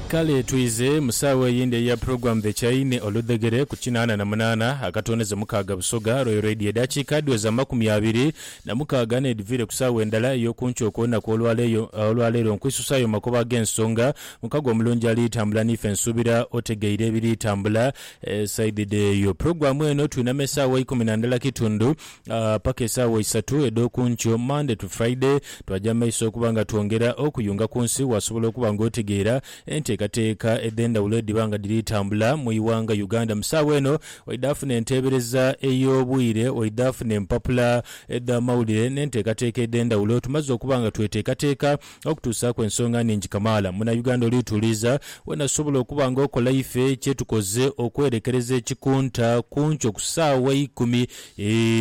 Kale twize mu saagho eyindi eya Program The Chaine oludhegere ku kinaana na munaana akatooneze mukaaga Busoga Royal Radio edhakiika dhiweze amakumi abiri na mukaaga n'edhiviire ku saagho endala ey'okunkyo okw'olunaku olwaleero nkwisusa ayo makubo ag'ensonga mukago omulungi ali tambula n'ife nsuubira otegeire ebiri tambula saidhi dh'eyo Program eno twinama esaawa ikumi na ndala kitundu paka esaawa isatu edh'oku nkyo, Monday to Friday, twaja mu maiso okuba nga twongera okuyunga ku nsi. Waasobola okuba ng'otegeera enteekateeka edh'endhawulo edhiba nga dhiri tambula mu ighanga Uganda mu saawa eno. Waidha afuna enteebereza ey'obwire, waidha afuna empapula edh'amawulire n'enteekateeka edh'endhawulo. Tumaze okuba nga tweteekateeka Okutuusaaku ensonga nhingi kamaala, Munauganda oli tuuliza, weena sobola okuba nga okola ife kyetukoze okwerekereza ekikunta kunkyo ku saawa ikumi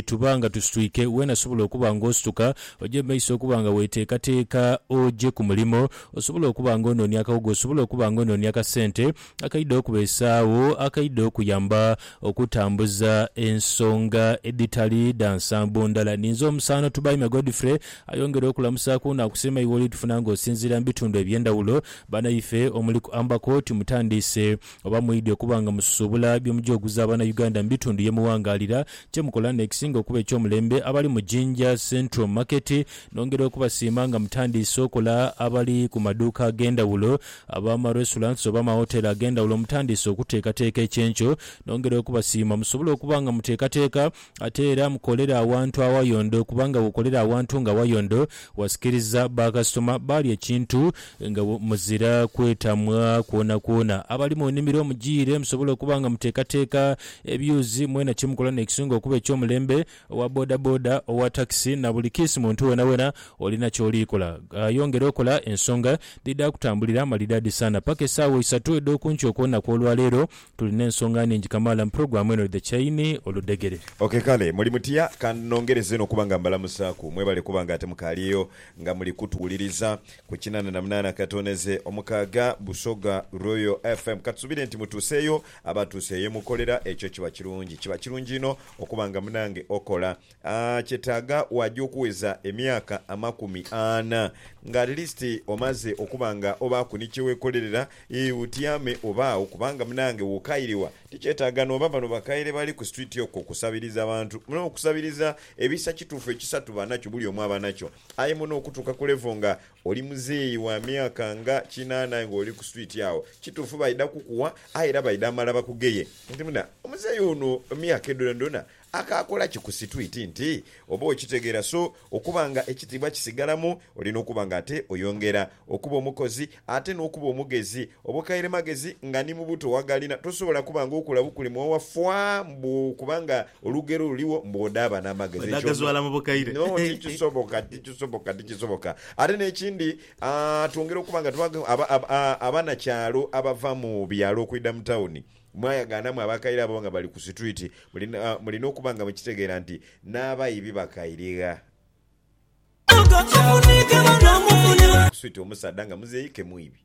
tuba nga tusitwike, weena sobola okuba nga osituka oja mu maiso okuba nga weteekateeka oje ku mulimo, osobola okuba nga onoonia akaghuga, osobola okuba nga onoonia akasente, akaidha okubeesaagho, akaidha okuyamba okutambuza ensonga edhitali dha nsambo ndala. Ninze omusaano Tubaime Godfrey ayongere okulamusaaku naakusiima iwe oli tufuna nga osinziira mu bitundu eby'endhawulo. Banaife omuli ku Ambako timutandiise oba mwidhi okuba nga mususuubula bye mugya oguza Bannayuganda mu bitundu ye muwangaalira. Kye mukola n'ekisinga okuba eky'omulembe abali mu Jinja Central Market nongera okubasiima nga mutandiise okola abali ku maduuka ag'endhawulo Abaama restaurants oba amawoteeli ag'endhawulo mutandiise okuteekateeka ekyenkyo, nongera okubasiima. Musobola okuba nga muteekateeka ate era mukolera awantu awayondo kubanga bw'okolera awantu nga wayondo wasikiriza bakasitoma baalya ekintu nga muzira kwetamwa kwonakwona. Abali mu nnimiro mujiire musobola okuba nga muteekateeka ebyuzi mwena kye mukola n'ekisinga okuba eky'omulembe. Owa bodaboda, owa takisi na buli kiisi muntu wonawona olina ky'oli kola, yongera okola ensonga dhidha kutambulira malidadi sana paka esaawa isatu edh'oku nkya okw'olunaku olwa leero. Tulina ensonga nhingi kamaala mu pulogulaamu eno The Chaini Oludhegere. Ok kale, muli mutya? Ka nongereze n'okuba nga mbalamusaaku. Mwebale kuba nga ate mukaalyeyo nga muli kutuwuliriza ku kinana na munaana katoneze omukaaga Busoga Royal FM. Katusuubire nti mutuuseeyo Abatuusa eyo emukolera ekyo kiba kirungi. Kiba kirungi inho okuba nga munaange okola. A Kyetaaga waja okuweza emyaka amakumi ana nga at least omaze okuba nga obaaku ni kye wekolerera, ii, otyame obaagho kubanga munaange wokairegha tikyetaaga nooba bano bakaire bali ku street okwo kusabiriza bantu. Muno okusabiriza ebisa kituufu ekisa tuba nakyo bulyomu aba nakyo aye muno okutuuka ku level nga Oli muzeeyi wa myaka nga kinaana aye ng'oli ku swiiti agho. Kituufu baidha kukugha aye era baidha mala bakugeye. Nti muna, Omuzeeyi ono emyaka edho dhoonadhoona akaakola ki ku situiiti? Nti, Oba okitegeera so okuba nga ekitiibwa kisigalamu, olina okuba nga ate oyongera okuba omukozi ate n'okuba omugezi. Obukailemagezi nga ni mu buto waghalina, tosobola kuba ng'okula bukuli mwowa faa mbu okuba nga Olugero luligho mbu bw'odaaba n'amagezi ekyo Bwedhagazwala mu bukaire. no tikisoboka, tikisoboka, tikisoboka. Ate n'ekindi twongera okuba nga tuba abanakyalo abava mu byalo okwidha mu tawuni mwayagaanamu abakaire abo nga bali ku situiti mulina okuba nga mukitegeera nti n'abaibi bakaire gha switi omusaadha nga muzei ke mwibi.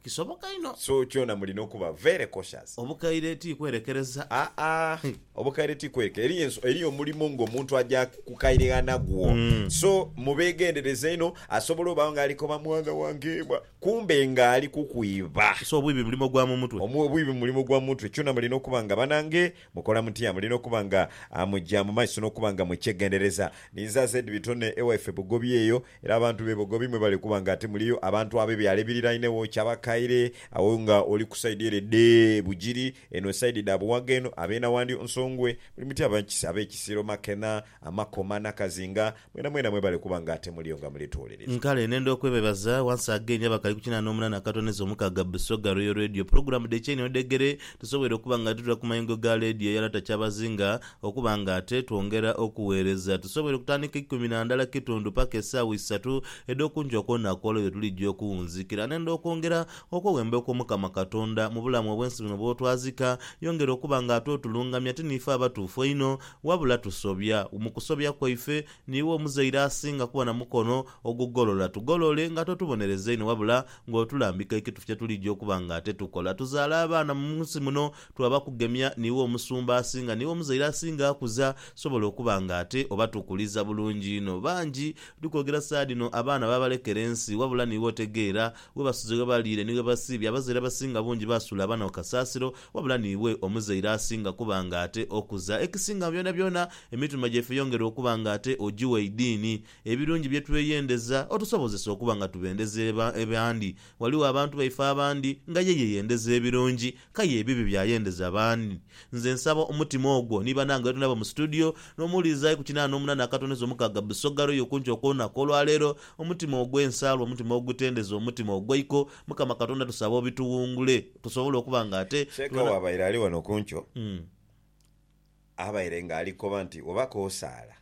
Kisoboka inho. So kyona mulina okuba very cautious. Obukaire ti kwerekereza. Aa obukaire ti kweke eriyo eriyo omulimo nga omuntu aja kukaire ghanagwo so mubegendereze inho asobola obagho nga alikoba mwana wange ebwa kumbe nga ali kukwiba. So obwibi mulimo gwa mumutwe. Omu obwibi mulimo gwa mumutwe kyona mulina okuba nga banange mukola mutya mulina okuba nga muja mumaiso nokuba nga mukyegendereza ninze aze edibitone ewaife bugobi eyo Era abantu be bogobi mwebale kuba nga ate muliyo abantu abe byalo ebirirainegho Kyabakaire agho nga oli ku side ere dhe Bugiri eno side dha Buwaga eno abe Nawandyo, Nsongwe, Bulimuti abe Kisiro, Makena, Amakoma, Nakazinga mwena mwena mwebale kuba nga ate muliyo nga muli tuwuliriza. Nkale nenda okwebebaza once again abakali ku kinana omunana akatono ezo mukaga Busoga Royal Radio pulogulamu dhe kyeini odhegere tusobweire okuba nga tuli ku mayengo ga leediyo eyalata Kyabazinga Okuba nga ate twongera okugheereza, tusoboire okutandika eikumi na ndala kitundu paka esaawa isatu edh'okungi okw'onaku olwo lwetulija okuwunzikira. N'endha okwongera okweghemba okw'Omukama Katonda mu bulamu obw'ensi buno bw'otwazika. Yongera okuba nga ate otulungamya, ti niife abatuufu einho, wabula tusobya. Mu kusobya kwaife, niiwe omuzaire asinga kuba na mukono ogugolola. Tugolole nga totubonereza inho wabula ng'otulambika ekitufu kye tulija okuba nga ate tukola. Tuzaale abaana mu nsi muno, Twaba kugemya niiwe omusumba asinga, niiwe omuzaire asinga akuza, tusobola okuba nga ate obatukuliza bulungi inho. Bangi, ndi kwogera saagha dhino, abaana baabalekera ensi, wabula niiwe otegeera. Ghebasuze, ghebaliire, ni ghebasiibye. Abazaire abasinga bungi baasuula abaana ku kasaasiro, wabula niiwe omuzaire asinga kuba nga ate okuza. Ekisinga mu byonabyona, emitima gyaife yongera okuba nga ate ogiwa eidiini. Ebirungi bye tweyendeza, otusobozesa okuba nga tubendeza abandi. Ghaligho abantu baife abandi nga ye yeyendeza ebirungi, K'aye ebibi byayendeza b'ani? Nze nsaba omutima ogwo ni banange ghetuli nabo mu situdiyo, n'omuwuliriza ali ku kinaana n'omunaana akatoneza omukaaga Busoga Royal okunki okw'olunaku olwaleero, omutima ogw'ensaalwa, omutima ogutendeza, omutima ogw'eiko, Mukama Katonda tusaba obituwungule tusobole okuba nga ate Sheikh tubona. bw'abaire ali ghano ku nkyo, abaire nga ali koba nti oba k'osaala,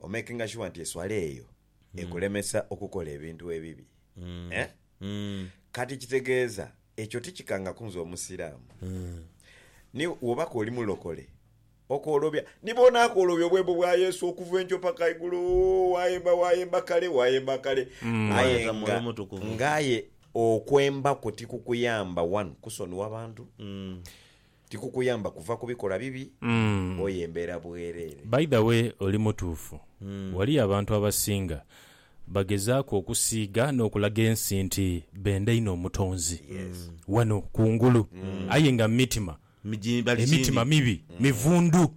omekinga shuwa nti eswala eyo ekulemesa okukola ebintu ebibi. Eh? Kati kitegeeza ekyo tikikangaku nze Omusiraamu? Ni wobako oli mulokole, okoolobya ni boona akoolobya obwembo bwa Yesu okuva enkyo paka igulu, wayemba, wayemba kale, wayemba kale. Aye Mwayeta nga, Mwoyo Mutukuvu. nga aye okwemba kwo tikukuyamba, one, kusonigha bantu, Tikukuyamba kuva ku bikola bibi oye mbeera bwereere. By the way oli mutuufu. Waliyo abantu abasinga bagezaaku okusiiga n'okulaga ensi nti benda inho Omutonzi wano ku ngulu aye nga mu mitima emitima mibi, mivundu.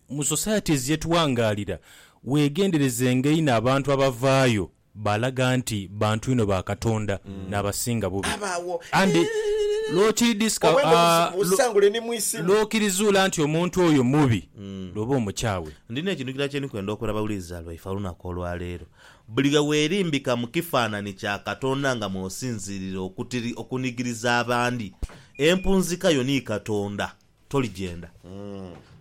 Mu societies ye tuwangaalira weegenderezenga inho abantu abavaayo Baalaga nti bantu inho ba Katonda, n'abasinga bubi. Abaawo Andi lw'okiridhiska, obwembo obuzibu busangule ni mu isi muno. lw'okirizuula nti omuntu oyo mubi, lw'oba omukyawe. Ndina ekintu kilala kye ndi kwenda okola bawuliriza baife olunaku olwa leero. Buli lwe weerimbika mu kifaananhi kya Katonda nga mw'osinziirira okutiri okunigiriza abandi, empunzika yo ni Katonda. toligyenda.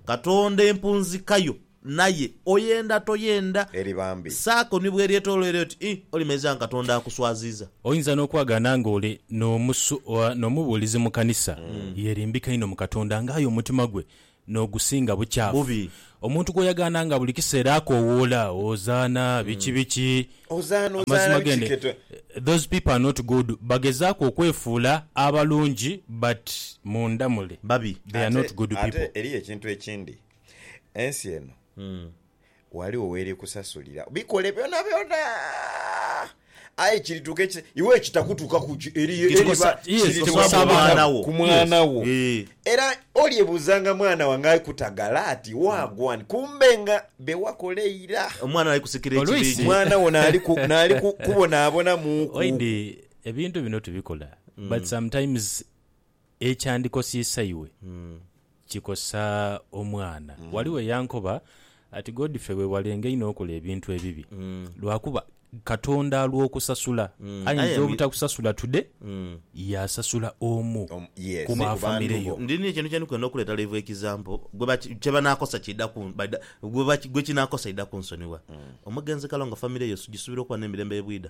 Katonda empunzika yo, naye oyenda toyenda, Eri bambi. saako ni bw'eryetoloire oti ii, olimanyiriza nga Katonda akuswaziiza. Oyinza n'okwagaana ng'oli n'omusu, oba n'omubuulizi mu kanisa, yeerimbika inho mu Katonda, ng'aye omutima gwe n'ogusinga bukyafu. Bubi. Omuntu gw'oyagaana nga buli kiseera akoowoola, Hozaana, biki biki. Hozaana, Hozaana, Amazima g'eno, bikiketwe. those people are not good. Bagezaaku okwefuula abalungi but munda mule Babi. they are Ate, not good ate people. eriyo ekintu ekindi. Ensi eno, ghaligho w'eri kusasulira. Bikole byonabyona! Aye kirituuka ekise, iwe ekitakutuukaku ki, eri, Kiri eriba kusa- yes, kirituuka ku osaaba mwana otya? wo. Ku mwana wo. Eh. Era olyebuuzanga mwana wange ali kutagala ati, Waagwani? Kumbe nga be wakola eira. Omwana ali kusikira Olwisi. ekibiidhi. Mwana wo naali ku- naali ku- kubonaabonamuuku. Oidhi ebintu bino tubikola but sometimes Ekyandikosiisa iwe kikosa omwana. Ghaligho eyankoba ati, Godfrey weewalenga inho okola ebintu ebibi lwakuba Katonda alw'okusasula. Ayinza obutakusasula today, yaasasula omu ku ba famire yo. Ndi n'ekintu kye ndi kwenda okuleeta live example, kye banaakosa kiidha ku, gwe kinaakosa aidha kunsonigha. Omugenzi Kalongo famire ye ogisubira okuba n'emirembe ye bwidha?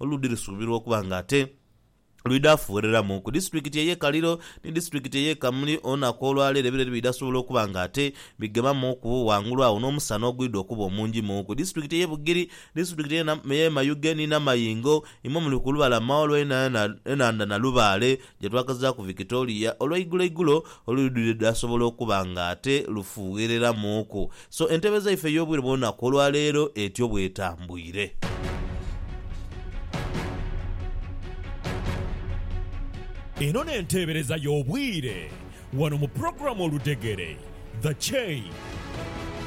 oludhi lusuubirwa okuba nga ate lwidha fuwereramu ku disitulikiti ey'e Kaliro ni disitulikiti ey'e Kamuli olunaku olwaleero ebireri bidha sobola okuba nga ate bigemamuuku ghangulu agho n'omusana ogwidha okuba omungi mu ku disitulikiti ey'e Bugiri, disitulikiti ey'e Mayuge ni Namayingo imwo muli ku lubalama olw'enhandha Nalubaale. gye twakazaaku Victoria olweigulo igulo olwidhwire dhaasobola okuba nga ate lufuughereramuuku. So entebeza yaife ey'obwire bw'olunaku olwaleero etyo bw'etambwire. Eno n'enteebereza y'obwire wano mu pulogulaamu Oludhegere, The Chain.